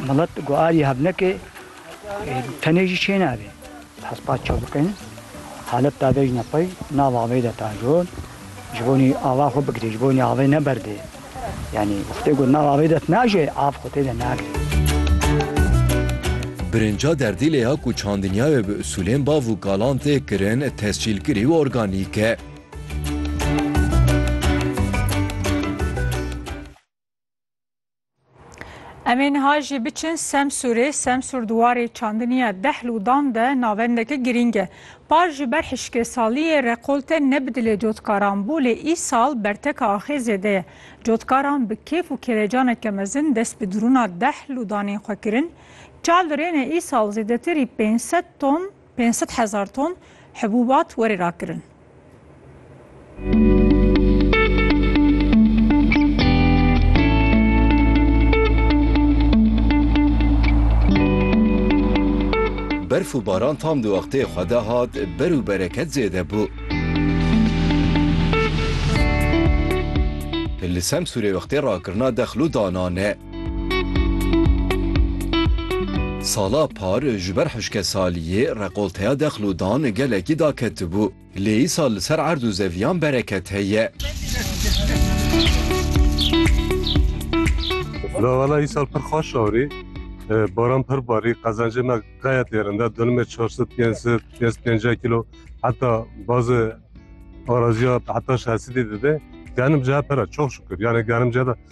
Milet ku alî hev neke tenê jî çê nabe. Hespa çav bikin halet dave jî ne qey nav avê de ta jon ji bonî ava xwe bigirê ji bonî avê ne berdê yanî xwedê got nav avê dest naje av xwe tê de nagirê. Birinca derdî lê ya ku çandinya wê bi usûlên bav û kalan tê kirin tescîlkirî û organîk e. Em ê niha jî biçin Semsûrê, Semsûr di warê çandiniya deh lûdan de navendeke girîng e. Par ji ber hişkêsaliyê rekolte ne bi dilê cotkaran bû lê îsal berteka axê zêde ye. Cotkaran bi kêf û kêrecaneke mezin dest bi dirûna deh lûdanên xwe kirin. Çavdirêne îsal zêdetirî pênc sed ton Pênc sed hezar ton hibûbat werê rakirin. Berf û baran tam di wextê xwe de hat, ber û bereket zêde bû. Li Semsûrê wextê rakirina dexil û danan e. Sala par ji ber hişkesaliyê rekolteya dexlûdan gelekî daketibû. Lê îsal li ser erd û zeviyan bereket heye. La wala îsal pir xweş arî. Baran pir barî, qezencê me gayet êrin de. Donimê çar sed, pênc sed, pênc sed pêncîya kîlo heta bazê araziya heta şeş sedî dide. Genim cehe pir e, çok şükür. Yanê genim cehe de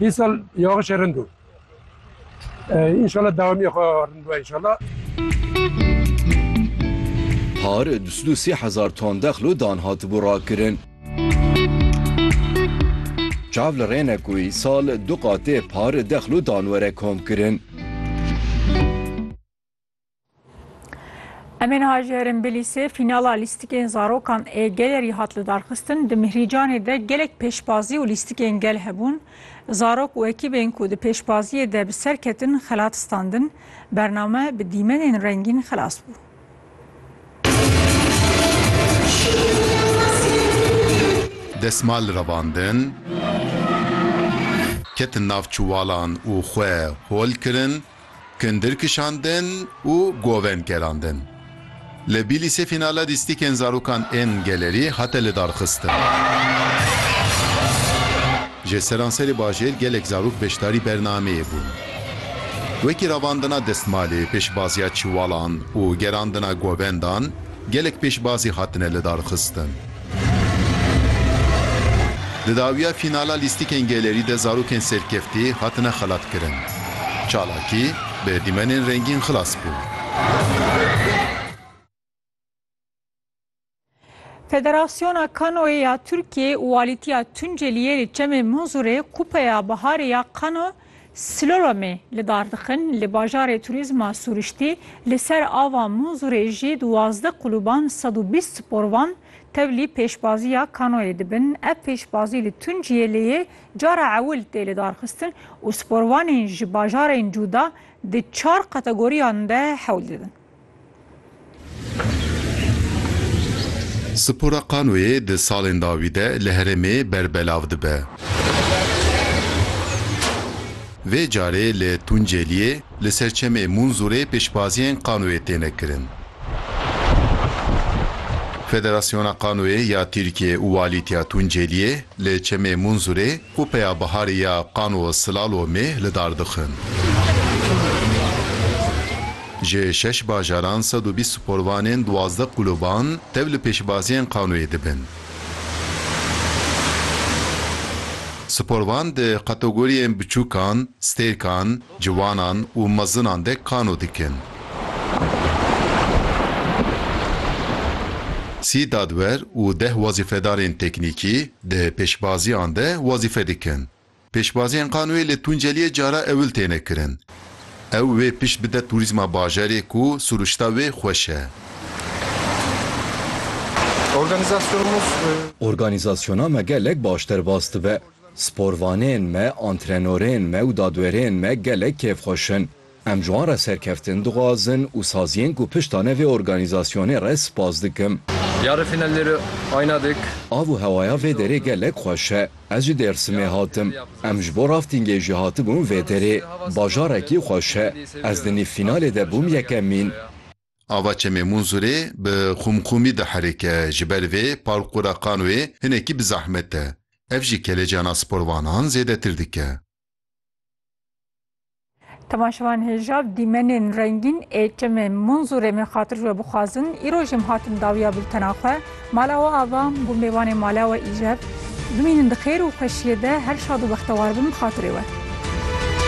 Hî sal yağişê rind o. İnşallah dewamiyê xwe rind be inşallah. Par du sed û sî hezar ton dexlo dan hatibû rakirin. Çav li rê ne ku îsal du qatê par dexlo dan were komkirin. Emên Hacerên Bilîsê fînala lîstikên zarokan ê gelerî hat li darxistin di Mihricanê de gelek pêşbazî û lîstikên gel hebûn. Zarok û ekîbên ku di pêşbaziyê de bi ser ketin xelat standin. Bername bi dîmenên rengîn xilas bû. Desmal revandin, ketin nav çuwalan û xwe hol kirin. Kindir kişandin û govên kerandin. Li Bîlîsê fînala lîstîkên zarokan ên gelerî hate lidarxistin. Ji seranserê bajêr gelek zarok beşdarî bernameyê bûn. Wekî ravandina destmalê, pêşbaziya çiwalan û gerandina govendan gelek pêşbazî hatine lidarxistin. Di dawiya fînala lîstikên gelêrî de zarokên serkeftî hatine xelatkirin. Çalakî bi dîmenên rengîn xilas bû. Federasyona Kanoyê ya Tirkiyeyê û Walîtiya Tunceliyê li Çemê Munzurê Kupeya Biharê ya Kano Sloromê li Dardixin li bajarê turîzma Sûriştî li ser ava Mûnzûrê jî di wazdeh qulûban sed û bîst sporvan tevlî pêşbaziya kanoyê dibin. Ev pêşbazî li Tunciyê lê yê cara ewil tê lidarxistin û sporvanên ji bajarên cûda di çar kategoriyan de hewl didin. Spora kanoyê di salên dawî de li herêmê berbelav dibe. Vê carê li Tunceliyê li ser çemê Munzurê pêşbaziyên kanoyê têne kirin. Federasyona Kanoyê ya Tirkiyê û Walîtiya Tunceliyê li çemê Munzurê Ku peya biharê ya qan û silalomê li dar dixin. Ji şeş bajaran sed û bîst sporvanên duwazdeh qûluban tev li pêşbaziyên qanoyê dibin. Sporvan di kategoriyên biçûkan, stêrkan, ciwanan û mezinan de kano dikin. Sî dadwer û deh wezîfedarên teknîkî Di pêşbaziyan de wezîfe dikin. Pêşbaziyên qanûyê li Tunceliyê cara ewil têne kirin. Ew wê pişt bide tûrîzma bajarê ku sirûşta wê xweş e. Organîzasyona me gelek baş derbas dibe. Sporvanên me, antrenorên me û dadwerên me gelek kêfxweş in. Em ji wan re serkeftin dixwazin û saziyên ku pişta ne vê organîzasyonê re spas dikim. Yarê fîna lêre ayna dik. Av û hewaya vê derê gelek xweş e. Ez ji Dêrsimê hatim. Em ji bo raftingê jî hatibûn vê derê. Bajarekî xweş e. Ez di nîv fînalê de bûm yekemîn. Ava Çemê Munzurê bi xûmxûmî diherike, ji ber vê parkûra qanûyê hinekî bi zehmet e. Ev jî kelecan a sporvanan zêdetir dike. Temaşevan hêjav dîmenên rengîn ê çimê Munzûrê min xatir ji we bixwazin. Îro jî em hatin dawiya bultena xwe. Mala we ava bû mêvanê mala we îjeb. Bimînin di xêr û xweşiyê de her şad û bextewar bin bi xatirê we.